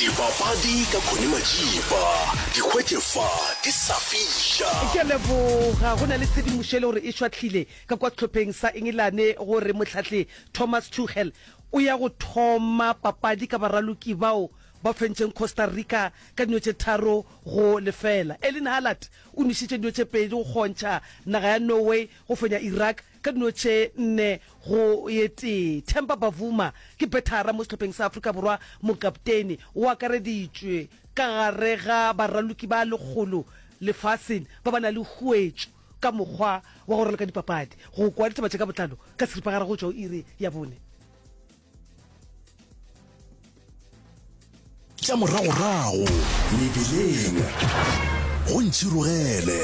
Dibapadi ka Connie Majiba, di hwetše fa di sa fiša. Ke a leboga. Go na le tshedimošo e le gore e šwahlile ka kwa sehlopheng sa Engelane gore mohlahli Thomas Tuchel o ya go thoma papadi ka baraloki bao ba fentšeng Costa Rica ka dino tše tharo go lefela. Erling Haaland o nwešitše dino tše pedi go kgontšha naga ya Norway go fenya Iraq ka dino tše nne go ye tee. Temba Bavuma ke bethara mo sehlopheng sa Afrika Borwa, mokapteine. O akareditšwe ka gare ga baraloki ba lekgolo lefaseng ba ba na le huetšo ka mokgwa wa go raloka dipapadi. Go kwa ditaba tše ka botlalo ka seripagare go tšwa go iri ya bone. tša moragorago mebileng go ntšhirogele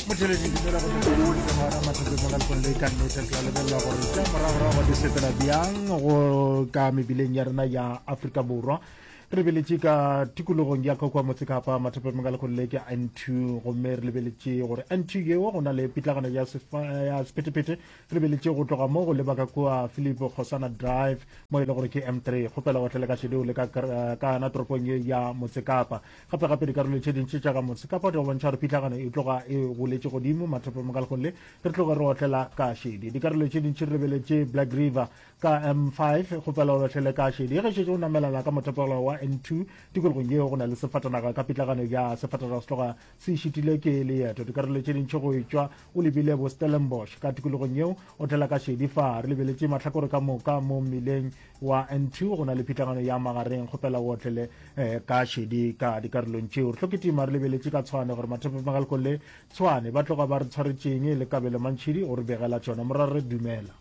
motheledi dumela go tloa mathekeng mo ka lekong le ka nnete tla lebelela gore tša moragorago di sepela bjang go ka mebileng ya rena ya aforika borwa re lebeletše ka tikologong ya kakwa motsekapa mathapameng ka lekgolo le ke antu gomme re lebeletše gore antu yeo go na le pitlagana ya sephetephete re lebeletše go tloga mo go leba ka kua philip kgosana drive mo e le gore ke m three kgopela go tlele ka šedeo le ka kana toropong ye ya motsekapa gape gape dikarolo tše dintši tša ka motsekapa di go bontšha gore pitlagana e tloga e goletše godimo mathapameng ka lekgolo le re tloge re otlela ka šedi dikarolo tše dintši re lebeletše black river ka m5 go fela o latlhele ka šedi ge šetše o namelana ka mothapelo wa n2 tikologong yeo go na le sefatanaga ka pitlagano ya sefatanaga se tloga se šitile ke leeto dikarolo tše dintšhi go etšwa o lebile bo stellenbosch ka tikologong yeo o tlela ka šedi fa re lebeletše mahlakore ka moka mo mmileng wa n2 go na le pitlagano ya magareng go fela o otlele eh, ka šedi ka dikarolong tšeo re hloketima re lebeletše ka tshwane gore mathapemagalko le tshwane ba tloga ba re tshwaretšeng le kabelo mantšhidi o re begela tšona morare dumela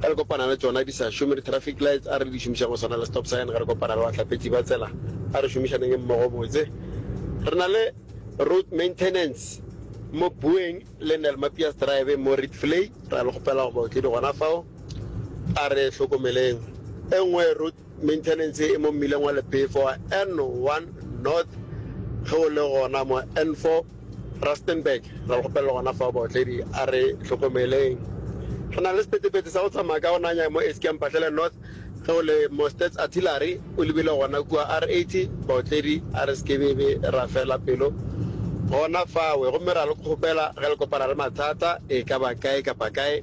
Ge re kopana le tšona di sa šome di-traffic lights, a re di šomišeng go swana le stop sign ge re kopana le bahlapetši ba tsela. A re šomišaneng mmogo botse. Re na le Road Maintenance mo Boeng le Nelmapias Drive mo Rietvlei, ra le kgopela gore baotledi gona fao a re hlokomeleng. E nngwe Road. Maintenance e mo mmileng wa Lepefo wa N1 North ge o le gona mo N4 Rustenburg. Re a le kgopelela gona fao baotledi a re hlokomeleng. Re na le sepetepete sa go tsamaya ka go nanya mo Eskia Mphahlele North ge o le mo Stats Artillery o lebile gona kua R80. Baotledi a re sekebebe ra fela pelo gona fawe gomme re a le kgopela ge le kopana le mathata e ka ba kae kapa kae,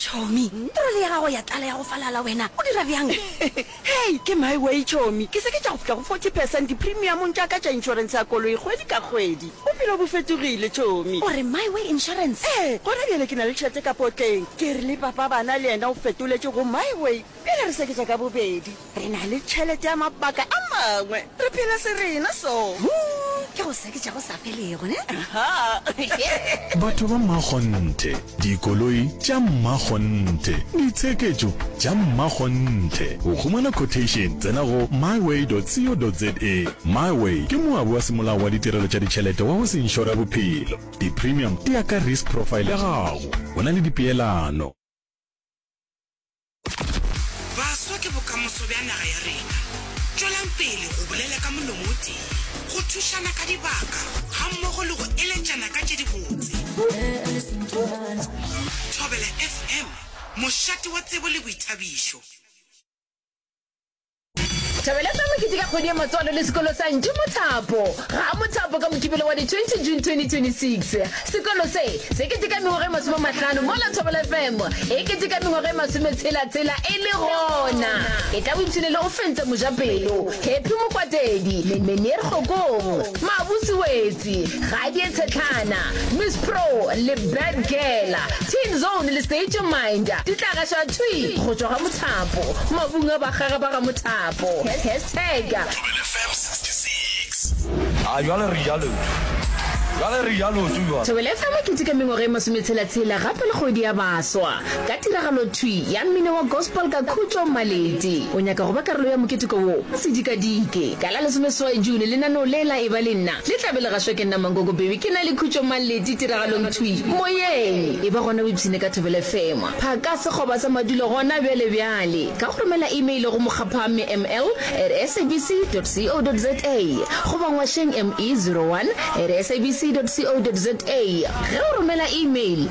Chomi, trole ya gago ya tlala ya go falala wena o dira bjang? Hei, ke my way Chomi, ke se ke tša go fihla go 40 percent dipremiumong tša ka tša insurance ya koloi kgwedi ka kgwedi. Bophelo bo fetogile Chomi. O re my way insurance? Ee, gona bjale ke na le tšhete ka potleng. Ke re le papa bana le yena o fetoletše go my way bjale re seketša ka bobedi. Re na le tšhelete ya mabaka a mangwe. Re phela serena so. Huu, ke go seketša go sa felego, ne? Ahaa. Batho ba mmakgonthe, dikoloi tša mmakgonthe, ditsheketšo tša mmakgonthe. Go humana quotation, tsena go myway.co.za. Myway ke moabi wa semolao wa ditirelo tša ditšhelete wa go se inšora bophelo. Di-premium di ya ka risk profile ya gago. Go na le dipeelano. Baswa ke bokamoso bja naga ya rena. Tšwelang pele go bolela ka molomo o tee, go thušana ka dibaka gammogo le go eletšana ka tše dibotse. Thobela FM, mošate wa tsebo le boithabišo. Thabeletsa mokete ka kgwedi ya matswalo le sekolo sa Ntši Mothapo. Ga Mothapo ka Mokibelo wa di 20 June 2026. Sekolo se, se keteka mengwaga e masome mahlano mola Thobela FM e keteka mengwaga e masome tshela tshela e le gona. E tla o ipshine le go fentsa Mojapelo, Happy Mokwatedi, Menier Kgokong, Mabusi Wetse, Di ga di e tshetlana, Miss Pro le Bad Girl, Teen Zone le State Your Mind di tla gaša thwi go tšwa ga mothapo, mabung a bagage ba ga mothapo. Hashtag. Thobela FM 66. A jwale re ja lotho. Jwale re ja lotho jwale. Thobela FM e keteka mengwaga e masometshela-tshela gape le kgwedi ya baswa. Ka tiragalothwi ya mmino wa gospel ka khutšo, Maleti o nyaka go ba karolo ya moketeko wo o sedikadike. Ka la lesomeseswai June, lenaneo le la Eba le Nna le tla be le gašwa ke nna Mankoko Bhemi ke na le Khutšo Maleti tiragalongthwi Moyeng. Eba gona o ipshine ka Thobela FM, phaka sekgoba sa madulo gona bjale bjale ka go romela email go mokgaphamme ml at sabc dot co dot za goba ngwašeng me zero one at sabc dot co dot za. Ge o romela email,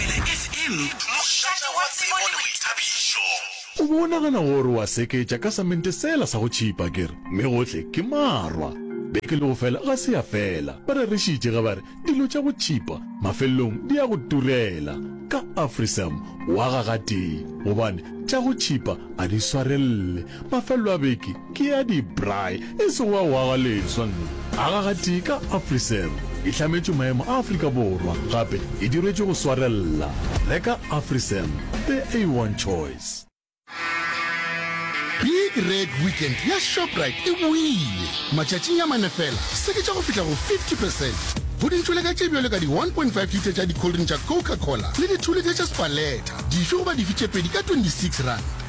Pele FM, mošate wa tsebo le boithabišo. O be o nagana gore wa seketša ka samente sela sa go tšhipa ke re, mme gohle ke marwa. Beke le go fela ga se ya fela, ba rerišitše ge ba re dilo tša go tšhipa mafelelong di ya go turela. Ka Africem wa ga gatee gobane tša go tšhipa a di swarelele. Mafelelo a beke Ke ya di braai e sego wa go aga leswa mme a ga gatee ka Afriserve. E hlametšwe maemo a Afrika Borwa gape e dirwetšwe go swarella. Reka Afriserve, the A1 choice. Big Red Weekend ya Shoprite e boile! Matšatšing a mane fela, seketša go fihla go 50 percent go dintšholeka tše bjalo ka di 1.5 litre tša dikholdring tša Coca-Cola le dithulithe tša Spaletta dife goba dife tše pedi ka 26 ranta.